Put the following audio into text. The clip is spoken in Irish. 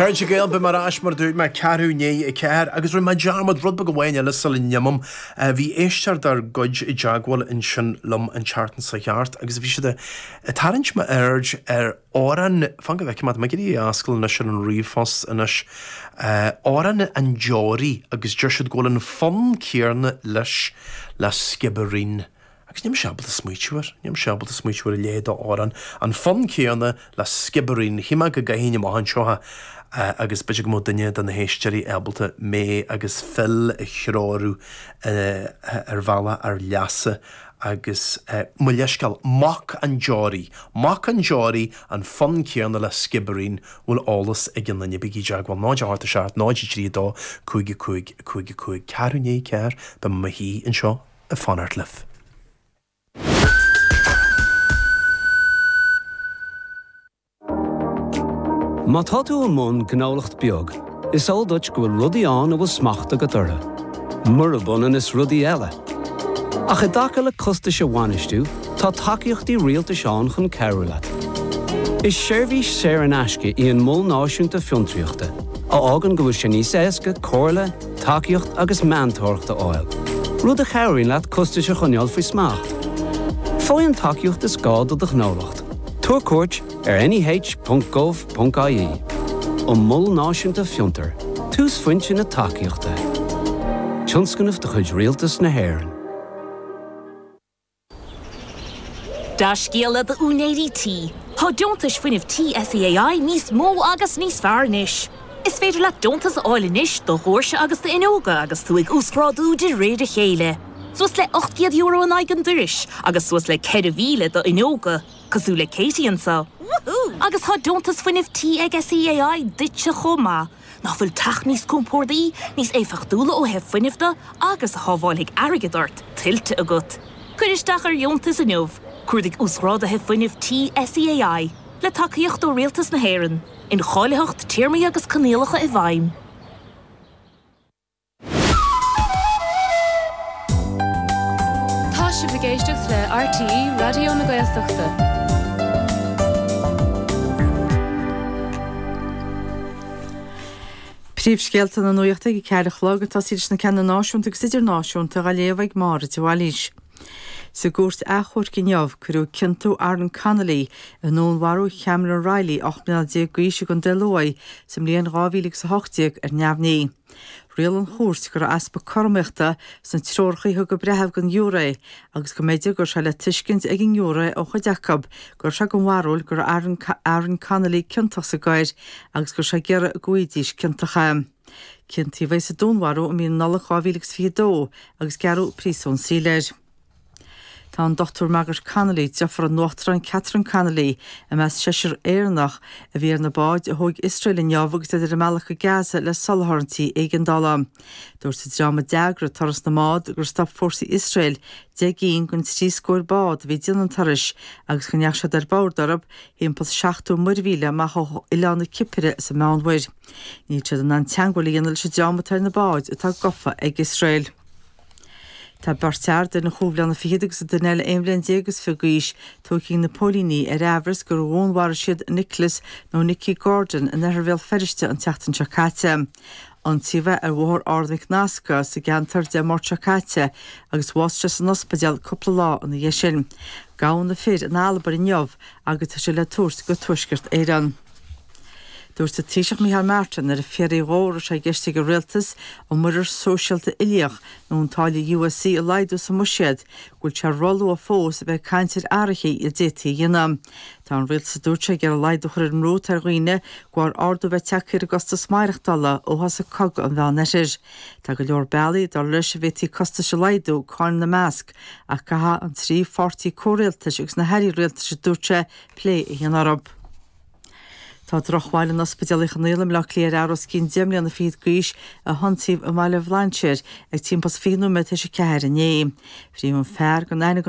Chairde Gael, beidh mé ar ais mar a dúirt mé, ceathrú i ndiaidh a ceathair, agus rinne mé dearmad rud beag amháin eile sula n-imim. Bhí éisteoir dár gcuid i dteagmháil ansin liom an tseachtain seo thart agus bhí siad ag tarraingt m'aird ar amhrán, fan go bhfeicfidh mé, tá mé ag iarraidh é a fhoscladh anois ar an ríomhphost anois? amhrán an deoraí agus deir siad go bhfuil an fonn céarna leis le Skibbereen. Agus níl mise ábalta smaoitiú ar, níl mise ábalta smaoitiú ar a leithéid d'amhrán, an fonn céanna le Sciobairín, shíl mé go gcaithfinn amach anseo é agus b'fhéidir go mbeadh duine de na héisteoirí ábalta mé agus Phil a threorú ar bhealach ár leasa agus mo leithscéal, Mac an Deoraí, Mac an Deoraí, an fonn céanna le Sciobairín, an bhfuil eolas ag aon duine, bígí i dteagmháil, 0 8 7 0 3 2 5 5 5 5, ceathrú i ndiaidh a ceathair beidh mé i mo shuí anseo. ag fanacht libh. Má tá tú i mbun gnólacht beag, is eol duit go bhfuil rudaí ann a bhfuil smacht agat orthu, murab ionann is rudaí eile. Ach i dtaca le costais a bhainistiú, tá tacaíochtaí rialtais ann chun cabhrú leat. Is seirbhís saor in aisce í an Mol Náisiúnta Fiontraíochta, a fhágann go bhfuil sé níos éasca comhairle, tacaíocht agus meantóireacht a fháil, rud a chabhraíonn leat costais a choinneáil faoi smacht. Faigh an tacaíocht is gá do do ghnólacht, tabhair cuairt ar neh.gov.ie An Mol Náisiúnta Fiontar, túsphointe na tacaíochta. Tionscnamh de chuid Rialtas na hÉireann. Dea-scéala do úinéirí tí. Tá deontais fuinnimh tí SEAI níos mó agus níos fearr anois. Is féidir leat deontas a fháil anois do dhoirse agus d'fhuinneoga agus tú ag uasghrádú de réir a chéile. Suas le €800 in aghaidh an dorais agus suas le 4,000 d'fhuinneoga, cosúil le Katie anseo. Woohoo! Agus tá deontas fuinnimh tí ag SEAI duitse chomh maith. Nach bhfuil teach níos compordaí, níos éifeachtúla ó thaobh fuinnimh de agus a shábháilfidh airgead ort, tuillte agat? Cuir isteach ar dheontas inniu, Cuardaigh Uasghrádaithe Fuinnimh Tí SEAI, le tacaíocht ó Rialtas na hÉireann, Incháilitheacht, Téarmaí agus Coinníollacha i bhfeidhm. Tá sibh ag éisteacht le RTÉ Raidió na Gaeltachta. Príomhscéalta na Nuaíochta ag a ceathair a chlog, ag tosaí leis na ceanna náisiúnta agus idirnáisiúnta, á léamh ag Máire de Bhailís. Sa gCúirt Achomhairc inniu, cuireadh ciontú Aaron Connolly i ndúnmharú Chameron Reilly, 18 mbliana d'aois i gContae Luaigh sa mbliain 2018, ar neamhní. Riail an Chúirt go raibh easpa cothromaíochta sna treoracha a thug an breitheamh don ghiúré agus go mb'fhéidir go raibh sé le tuiscint ag an ngiúré ó chuid acu go raibh sé den bharúil go raibh Aaron Connolly ciontach sa gcoir agus go raibh sé ag iarraidh go bhfaighidís ciontach é. Ciontaíodh é sa dúnmharú i mí na Nollag 2022 agus gearradh príosún saoil air. Tá an Dr Margaret Connolly, deirfiúr an Uachtaráin Catherine Connolly, i measc seisear Éireannach a bhí ar na báid a thóg Iosrael inniu agus iad ar a mbealach go Gaza le soláthairtí éigeandála. Dúirt an dream a d'eagraigh turas na mbád gur stop fórsaí Iosrael deich gcinn den trí scór bád a bhí ag déanamh an turais agus go ndeachaigh siad ar bord orthu timpeall's seachtó muirmhíle amach ó oileán na Cipire sa Mheánmhuir. Níl siad in ann teangmháil a dhéanamh leis an dream atá ar na báid atá gofa ag Iosrael. Tá beirt fhear, duine chúig bhliana fichead agus an duine eile aon bhliain déag is fiche d'aois, tógtha ag na póilíní ar amhras gur dhúnmharaigh siad Nicholas, nó Nicky, Gordon in oirthear Bhéal Feirste an tseachtain seo caite. Ionsaíodh é ar Bhóthar Ard Mhic Nasca sa gceantar Dé Máirt seo caite agus bhásaigh sé san ospidéal cúpla lá ina dhiaidh sin. Gabhadh na fir in Albain inniu agus tá siad le tabhairt go Tuaisceart Éireann. Dúirt an Taoiseach Micheál Martin nuair a fiafraíodh dhó an raibh sé i gceist ag an Rialtas an Muirear Sóisialta Uilíoch nó an táille USC a laghdú sa mBuiséad go bhfuil sé roluath fós a bheith ag caint ar athruithe a d'fhéadfaí a dhéanamh. Tá an Rialtas a dúirt sé ag iarraidh laghdú a chur ar an mbrú atá ar dhaoine de bharr ardú a bheith tagthaí ar a gcostas maireachtála ó thosaigh Cogadh an Mheánoirthir. Tá go leor bealaí, dar leis, a bhféadfaí costais a laghdú, cáin ina measc, ach caithfidh an trí pháirtí comhrialtais agus na hAirí Rialtais a dúirt sé plé a dhéanamh orthu. Tá drochbhail in Ospidéal Uí Chonaill i mBleá Cliath ar fhear os cionn deich mbliana fichead d'aois a hionsaíodh i mBaile Bhlainséir ag timpeall's 20 nóiméad tar éis a ceathair inné. Fríothadh an fear gan aithne gan